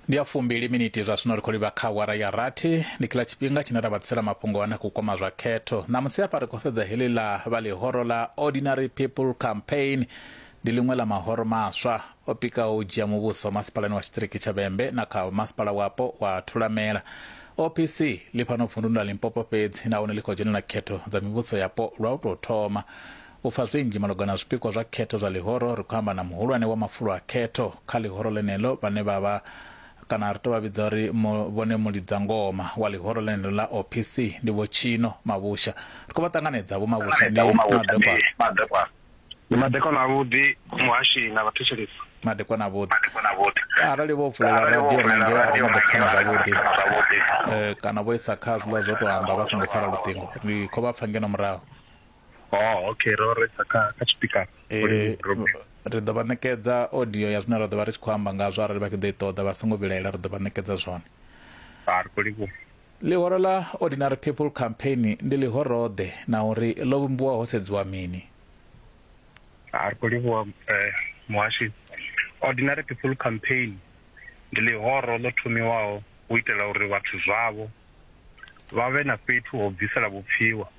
ndi ya fumbili miniti zwa zwino ri khou livha kha awara ya rathi ndi kila tshifhinga tshine ra vhatsela mafhungo ane khou kwama zwa khetho ṋamusi hafha ri khou sedza heḽi ḽa vha ḽihoro ḽa ordinary people campaign ndi ḽiṅwe ḽa mahoro maswa o pikaho u dzhia muvhuso masipalani wa tshiṱiriki tsha vhembe na kha masipala wapo wa thulamela opc ḽi fhano vunduni ḽa limpopo fhedzi nahone ḽi khou dzhenela khetho dza mivhuso yapo lwa u tou thoma U pfa zwinzhi malugana na zwipikwa zwa khetho zwa ḽihoro, ri khou amba na muhulwane wa mafulo a khetho kha ḽihoro ḽeneḽo vhane vha vha kana ri tou vha vhidza uri mu, vhone mulidzangoma wa ḽihoro ḽeneḽo ḽa OPC ndi Vho Tshino Mavhusha. Ri khou vha ṱanganedza. Vho Mavhusha ndi madekwana. Ndi madekwana avhuḓi muhashini na vhathetshelesi. Madekwana avhuḓi. Arali vho vulela radio na ngeo a ri nga ḓo pfana zwavhuḓi, kana vho isa kha zwiḽa zwo tou amba vha songo fara luṱingo, ri khou vha pfa ngeno murahu. oh okay ro resa kha kha tshipikara eh, ri ḓo vha ṋekedza audio ya zwine ra ḓo vha ri tshi khou amba ngazwo arali vha tshi ḓo i ṱoḓa vha songo vhilaela ri ḓo vha ṋekedza zwone ḽihoro ḽa ordinary people campaign ndi ḽihoroḓe na uri ḽo vhumbiwa ho sedziwa mini a ri khou livhuwa eh, muhashi ordinary people campaign ndi ḽihoro ḽo thomiwaho u itela uri vhathu zwavho vha vhe na fhethu ho bvisela vhupfiwa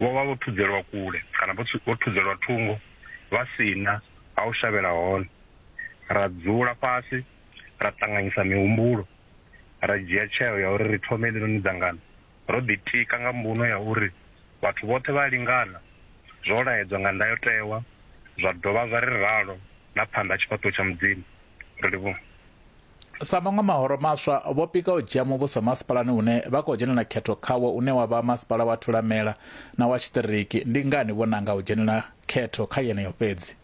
vho vha vho thudzelwa kule kana vho vho thudzelwa thungo vha si na ha u shavhela hone. Ra dzula fhasi ra ṱanganyisa mihumbulo ra dzhia tsheo ya uri ri thome heḽinoni dzangano ro ḓitika nga mbuno ya uri vhathu vhoṱhe vha a lingana zwo laedzwa nga ndayotewa zwa dovha zwa ri ralo na phanḓa ha tshifhaṱuwo tsha Mudzimu. Ri livhuha. Sa maṅwe mahoro maswa, vho pika u dzhia muvhuso masipalani une vha khou dzhenela khetho khawo une wa vha Masipala wa Thulamela na wa Tshiṱiriki. Ndi ngani vho nanga u dzhenela khetho kha yeneyo fhedzi?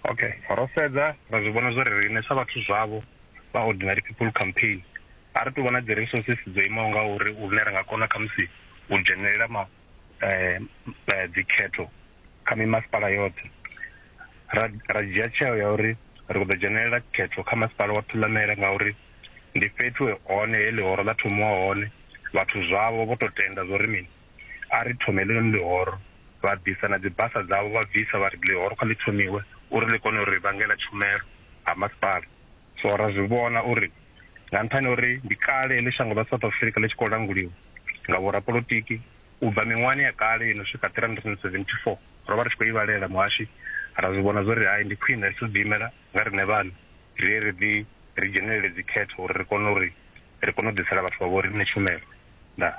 Ok, ro sedza ra zwi vhona zwa uri riṋe sa vhathu zwavho vha Ordinary People Campaign a ri tou vha na dzi resources dzo imaho ngauri lune ra nga kona khamusi u dzhenelela ma. um dzikhetho kha mimasipala yoṱhe ra ra dzhia tsheo ya uri ri khou ḓo dzhenelela khetho kha masipala wa thulamele ngauri ndi fhethu hone he ḽihoro ḽa thomiwa hone vhathu zwavho vho to tenda zwo ri mini a ri thome ḽinoni ḽihoro vha bvisa na dzibasa dzavho vha bvisa vha ri ḽihoro kha ḽi thomiwe uri ḽi kone uri vhangela tshumelo ha masipala So ra zwi vhona uri nga nṱhani uri ndi kale heḽi shango ḽa South Africa ḽi tshi khou languliwa nga vhorapolotiki u bva miṅwahani ya kale ino swika 374 ro vha ri tshi khou ivhalela muhashi ra zwi vhona zwori hai ndi khwine ri tshi ḓi imela nga riṋe vhaṋe ri ye ri ḓi ri dzhenelele dzikhetho uri ri kone uri ri kone u ḓisela vhathu vha vho riṋe tshumelo Ndaa.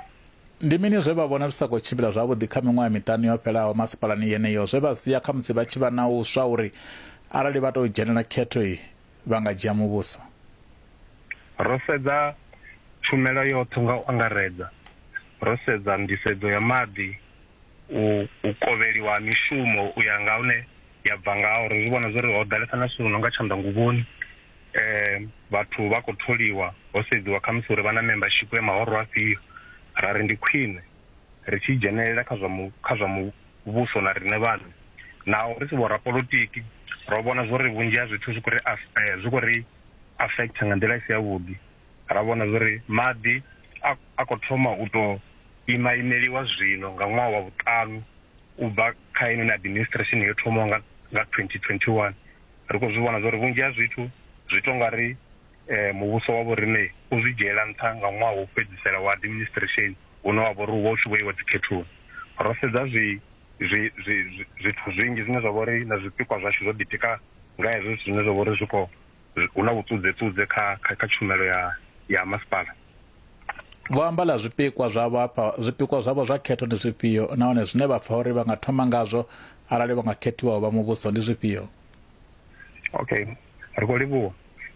Ndi mini zwe vha vhona zwi sa khou tshimbila zwavhuḓi kha miṅwaha miṱanu yo fhelaho masipalani yeneyo zwe vha sia khamusi vha tshi vha na u swa uri arali vha tou dzhenela khetho iyi vha nga dzhia muvhuso? Ro sedza tshumelo yoṱhe nga u angaredza. Ro sedza nḓisedzo ya maḓi, u u kovheliwa ha mishumo u ya nga hune ya bva ngaho. Ro zwi vhona zwa uri ho ḓalesa na zwithu zwi no nga tshanḓanguvhoni um vhathu vha khou tholiwa ho sedziwa khamusi uri vha na membership ya mahoro afhio ra ri ndi khwine ri tshi dzhenelela kha zwa kha zwa muvhuso na riṋe vhaṋe naho ri si vhorapolotiki ro vhona zwo ri vhunzhi ha zwithu zwi khou ri eh, zwi khou ri affect nga nḓila i si yavhuḓi ra vhona zwo ri maḓi a khou thoma u tou ima imeliwa zwino nga ṅwaha wa vhuṱanu u bva kha inoni administration yo thomaho nga 2021 ri khou zwi vhona zwa uri vhunzhi ha zwithu zwi to nga ri um muvhuso wa vhorine u zwi dzhiela nṱha nga ṅwaha wo fhedzisela wa administration une wa vha uri u vha u tshi vho iwa dzikhethoni ro sedza zwi zwithu zwinzhi zwine zwa vha uri na zwipikwa zwashu zwo ḓitika nga hezwo zwithu zwine zwa vha uri zwi khou hu na vhuṱudzeṱudze kha kha tshumelo ya ya masipala Vho amba ḽa zwipikwa zwavho hafha zwipikwa zwavho zwa khetho ndi zwifhio nahone zwine vha pfa uri vha nga thoma ngazwo arali vha nga khethiwa u vha muvhuso ndi zwifhio? Okay. Ri khou livhuwa.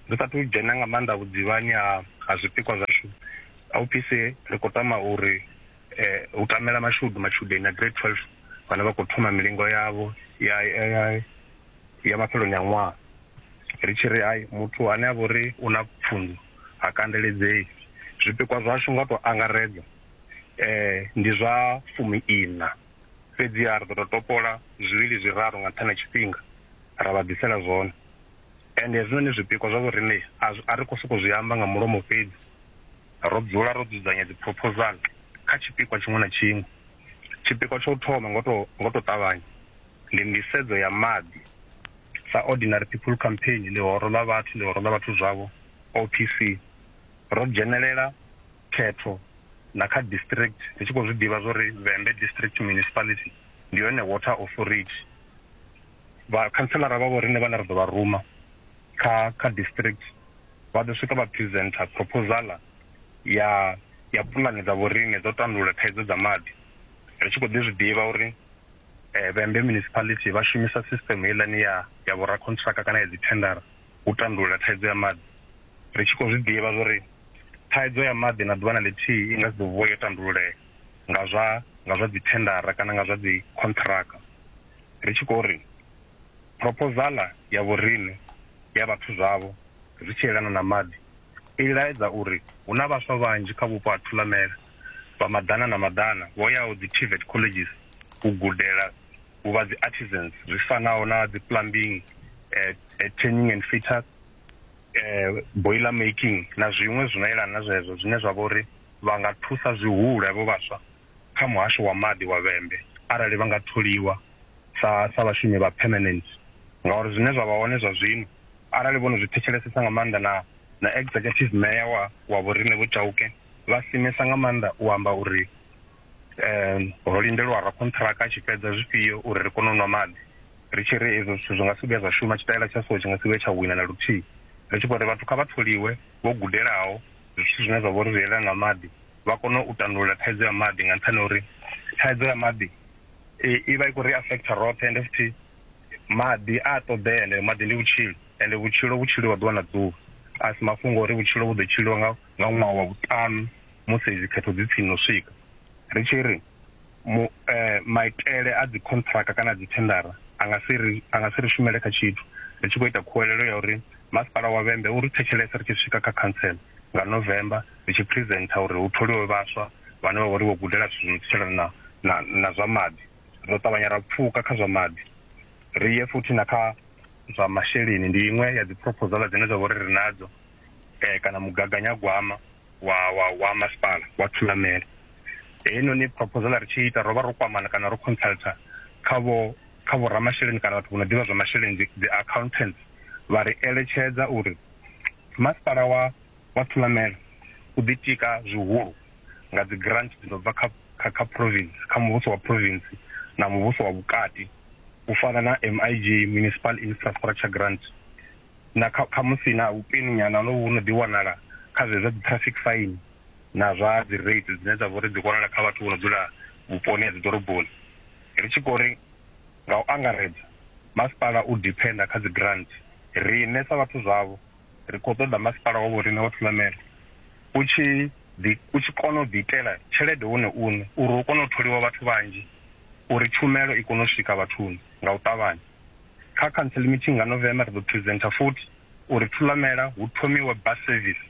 Ri sa athu dzhena nga maanḓa vhudzivhani ha ha zwipikwa zwashu, OPC ri khou tama uri hu tamela mashudu matshudeni a Grade 12 vhane vha khou thoma milingo yavho ya ya ya mafheloni a ṅwaha. Ri tshi ri hai muthu ane a vha uri u na pfunzo ha kandeledzei. Zwipikwa zwashu nga tou angaredza eh, ndi zwa fumi ina fhedziha ri ḓo tou topola zwivhili zwiraru nga nṱhani ha tshifhinga ra vha ḓisela zwone ende hezwinoni zwipikwa zwa vhoriṋe a ri khou sokou zwi amba nga mulomo fhedzi ro dzula ro dzudzanya dziphrophozala kha tshipikwa tshiṅwe na tshiṅwe tshipikwa tsha u thoma ngo tou ṱavhanya ndi nḓisedzo ya maḓi sa Ordinary People Campaign, Ḽihoro ḽa Vhathu, Ḽihoro ḽa Vhathu Zwavho, OPC. Ro dzhenelela khetho na kha district ri tshi khou zwi ḓivha zwo ri Vhembe District Municipality ndi yone Water Authority. Vha khantseḽara vha vho riṋe vhane ra ḓo vha ruma kha kha district vha ḓo swika vha presenter proposal ya ya puḽane dza vhoriṋe dzo tandulula thaidzo dza maḓi ri tshi khou ḓi zwi ḓivha uri eh, Vhembe Municipality vha shumisa system heiḽani ya ya vhorakhontraka kana ya dzithendara u tandulula thaidzo ya maḓi ri tshi khou zwi ḓivha zwori thaidzo ya maḓi na ḓuvha na ḽithihi i nga si ḓo vuwa yo tandululea nga zwa nga zwa dzithendara kana nga zwa dzikhontraka ri tshi khou ri proposala ya vhorine ya vhathu zwavho zwi tshi elana na maḓi i laedza uri hu na vhaswa vhanzhi kha vhupo ha thulamela vha maḓana na maḓana vho yaho dzi TVET colleges u gudela u vha dzi artisans zwi fanaho na dzi plumbing eh, eh, tanning and fitter eh, boiler making na zwiṅwe zwi no yelana na zwezwo zwine zwa vha uri vha nga thusa zwihulu havho vhaswa kha muhasho wa maḓi wa vhembe arali vha nga tholiwa sa sa vhashumi vha permanent ngauri zwine zwa vha hone zwa zwino Arali vho no zwi thetshelesesa nga maanḓa na na executive mayor wa wa vhorine Vho Chauke vha simesa nga maanḓa u amba uri um ho lindelwa ra khonṱhiraka a tshi fhedza zwifhio uri ri kone u nwa maḓi ri tshi ri ezwo zwithu zwi nga si vhuya zwa shuma tshitaela tsha so tshi nga si vhuye tsha wina na luthihi ri tshi khou ri vhathu kha vha tholiwe vho gudelaho zwithu zwine zwa vha uri zwi yelana na maḓi vha kone u tandulula thaidzo ya maḓi nga nṱhani ha uri thaidzo ya maḓi i vha i khou ri affecta roṱhe ende futhi maḓi a ṱoḓea ende maḓi ndi vhutshilo ende vhutshilo vhu tshiliwa ḓuvha na ḓuvha a si mafhungo uri vhutshilo vhu ḓo tshiliwa nga nga ṅwaha wa vhuṱanu musi dzi khetho dzi tsini no swika ri tshi ri mu eh, maitele a dzi contract kana dzi tendara a nga si ri a nga si ri shumele kha tshithu ri tshi khou ita khuwelelo ya uri masipala wa vhembe uri thetshelesa ri tshi swika kha council nga november ri tshi presenter uri hu tholiwe vhaswa vhane vha vha uri vho gudela zwithu zwo no na na zwa maḓi ro ṱavhanya ra pfuka kha zwa maḓi ri ye futhi na kha zwa masheleni ndi iṅwe ya dziphroposala dzine dza vha uri ri nadzo um kana mugaganyagwama wa wa wa masipala wa thulamele heinoni proposala ri tshi ita ro vha ro kwamana kana ro consulta kha vho kha vho ramasheleni kana vhathu vho no ḓivha zwa masheleni dzi accountants vha ri eletshedza uri masipala wa vha thulamela u ḓitika zwihulu nga dzigrant dzi no bva kha kha kha province, kha muvhuso wa province na muvhuso wa vhukati u fana na MIG, Municipal Infrastructure Grant, na kha khamusi na vhupini nyana ho no vhu no ḓi wanala kha zwe zwa dzi traffic fine na zwa dzi rates dzine dza vhori dzi wanala kha vhathu vho no dzula vhuponi ha dziḓoroboni. Ri tshi khou ri nga u angaredza masipala u depender kha dzigrant riṋe sa vhathu zwavho, ri khou ṱoḓa masipala wa vhoriṋe wa Thulamela u tshi u tshi kona u ḓiitela tshelede wone une uri hu kone u tholiwa vhathu vhanzhi uri tshumelo i kone u swika vhathuni nga u ṱavhanya. Kha council meeting nga November ri ḓo presenter futhi uri Thulamela hu thomiwe bus service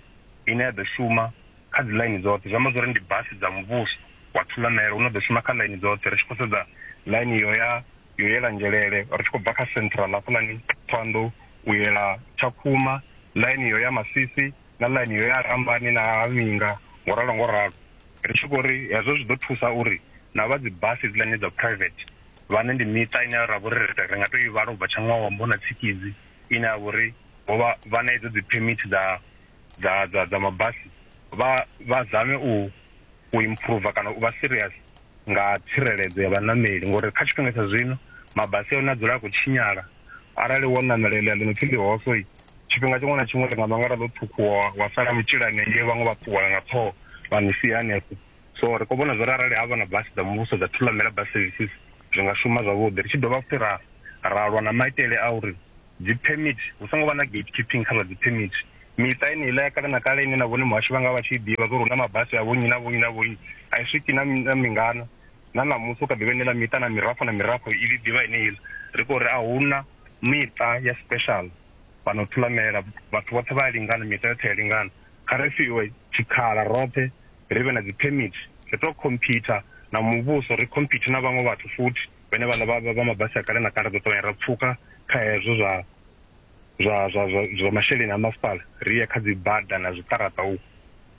ine ya ḓo shuma kha dzi ḽaini dzoṱhe, zwi amba zwori ndi basi dza muvhuso wa Thulamela u no ḓo shuma kha ḽaini dzoṱhe ri tshi khou sedza ḽaini iyo ya yo yela Ngelele ri tshi khou bva kha Central hafhaḽani Thohoyandou u yela Tshakhuma, ḽaini yo ya Masisi na ḽaini yo ya Rambani na ha Vhinga ngo ralo ngo ralo. Ri tshi khou ri hezwo zwi ḓo thusa uri na vha dzi basi hedziḽani dza private vhane ndi miṱa ine ra vha uri ri nga tou i vhala u bva Tshanṅwawombo na Tshikidzi ine ya vha uri vho vha vha na idzo dzi permit dza dza dza dza mabasi vha vha zame u u improver kana u vha serious nga tsireledzo ya vhaṋameli ngori kha tshifhinga tsha zwino mabasi a hone a dzula a khou tshinyala arali wo ṋamela eḽia ḽi no pfhi ḽihoso tshifhinga tshiṅwe na tshiṅwe ḽi nga ṋangala ḽo ṱhukhuwa wa sala mutshila hanengei vhaṅwe vha ṱuwa nga ṱhoho vha ni sia hanefho so ri khou vhona zwa uri arali havha na basi dza muvhuso dza thulamela bus services zwi nga shuma zwavhuḓi ri tshi dovha futhi ra ra lwa na maitele a uri dzi permit hu songo vha na gate keeping kha zwa dzi permit miṱa yeneiḽa ya kale na kale ine na vhone muhasho vha nga vha tshi ḓivha zwo ri hu na mabasi a vhonyi na vhonyi na vhonyi a i swiki na mingana na ṋamusi u kha ḓivha inela miṱa na mirafho na mirafho i ḽi ḓivha yeneiḽa ri khou ri a hu na miṱa ya special fhano thulamela vhathu vhoṱhe vha a lingana miṱa yoṱhe ya lingana kha ri fhiwe tshikhala roṱhe ri vhe na dzi permit ri to computer na muvhuso ri computer na vhaṅwe vhathu futhi vhene vhaḽa vha vha mabasi a kale na kale ḓo ṱavhanya ra pfuka kha hezwo zwa zwa zwa zwa zwa masheleni a masipala ri ye kha dzi bada na zwiṱaraṱa u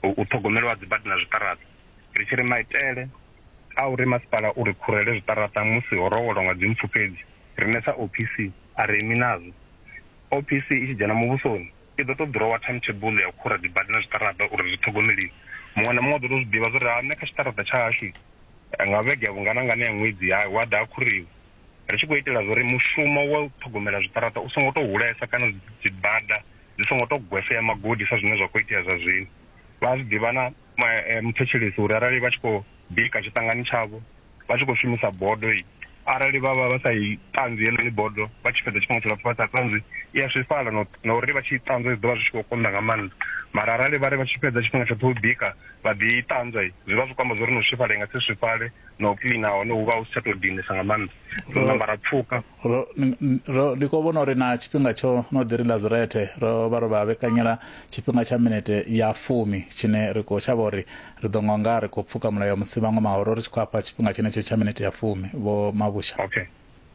u ṱhogomelo ha dzi bada na zwiṱaraṱa ri tshi ri maitele a uri masipala uri khurele zwiṱaraṱa musi ho rowelwa nga dzi mpfu fhedzi rine sa OPC a re mi nazwo OPC i tshi dzhena muvhusoni i ḓo tou ḓirowa timetable ya u khura dzibada na zwiṱaraṱa uri zwi ṱhogomeliwe. Muṅwe na muṅwe u ḓo tou zwi ḓivha zwa uri ha nṋe kha tshiṱaraṱa tsha hashu nga vhege ya vhungana-ngana ya ṅwedzi ya hu a ḓa ha khuriwa. Ri tshi khou itela zwa uri mushumo wa u ṱhogomela zwiṱaraṱa u songo tou hulesa kana dzibada dzi songo tou gwesea magodi sa zwine zwa khou itea zwa zwino. Vha a zwi ḓivha na. eh, muthetshelesi uri arali vha tshi khou bika tshiṱangani tshavho vha tshi khou shumisa bodo i arali vha vha vha sa i ṱanzwi heḽoni bodo vha tshi fhedza tshifhinga tshilapfu vha sa ṱanzwi i a swifhala na uri vha tshi i ṱanzwa zwi ḓo vha zwi tshi khou konḓa nga maanḓa mara arali vha ri vha tshi fhedza tshifhinga tshoṱhe u bika vha ḓi i ṱanzwa zwi vha zwi khou amba zwa uri no swifhala i nga si swifhale na u cleana hone hu vha hu si tsha tou dinesa nga maanḓa so na mara pfhuka Ro, ro, ndi khou vhona uri na tshifhinga tsho no ḓi ri Lazurethe ro vha ro vha vhekanyela tshifhinga tsha minete ya fumi tshine ri khou shavha uri ri ḓo nga nga ri khou pfuka mulayo musi vhaṅwe mahoro ri tshi khou afha tshifhinga tshenetsho tsha minete ya fumi, Vho Mabusha. Okay.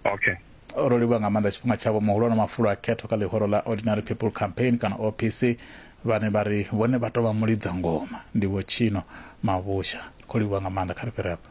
Okay. Ro livhuwa nga maanḓa tshifhinga tshavho muhulwane wa mafulo a khetho kha ḽihoro ḽa Ordinary People Campaign kana OPC vhane vha ri vhone vha tou vha mulidza ngoma ndi Vho Chino Mabusha. Ri khou livhuwa nga maanḓa, kha ri fhire afha.